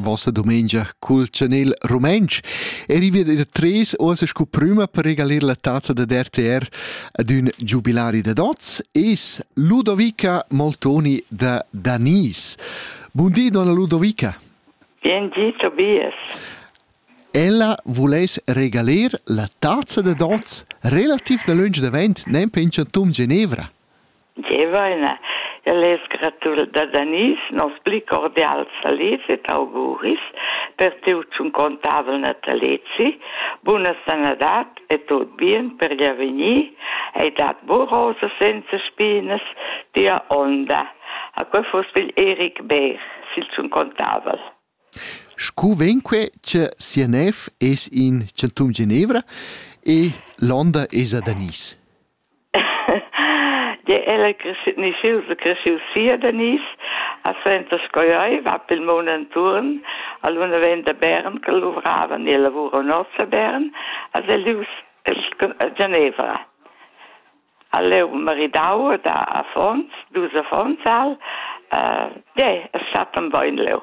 Vossa domengia cul chanel rumentsch eri via da tres oas scu prüma per regalir la tazza da RTR ad ün giubilari da dots es Ludovica Moltoni da Danis. Bun di, donna Ludovica. Bien di, Tobias. Ella vuless regalir la tazza da dots relativ da lönch davent, nem penchant tum Genevra. Deva ina. El es gratul da Danis, nos pli cordials salits et auguris per tiu contabel natalezi, buna sanadat e tot bien per gli avegnir, hai dat buca rosa senza spinas, tia onda. A quei fos figl Eric Beer, sil tun contabel. Scu venque che sia nev es in centum Genevra e l'onda es a Danis. de ella nischiu se cresciu sia Denise a Senta Scoioi va pel mon enturn a luna vent da Bern che luvrava nel lavoro nostra Bern a Zelius Genevra a leu maridau da Afons dus Afonsal de è stat un boin leu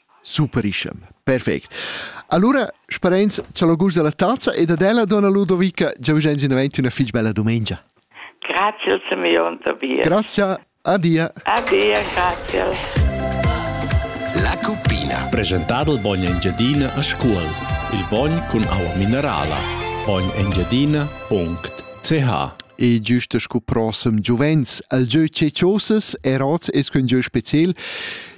Superischem, perfect. Allora sperains cha lo gust della tazza ed ad ella donna Ludovica già vigiains in avanti una fich bella dumengia. Grazie al Simeon Tobias. Grazie, adia. Adia, grazie. La cuppina. Presentado il bogno Engiadina a scuol. Il bogn con aua minerala. bognengiadina.ch E giusto scu prossem giuvens al gieu cecioses e rots es cun gieu speciel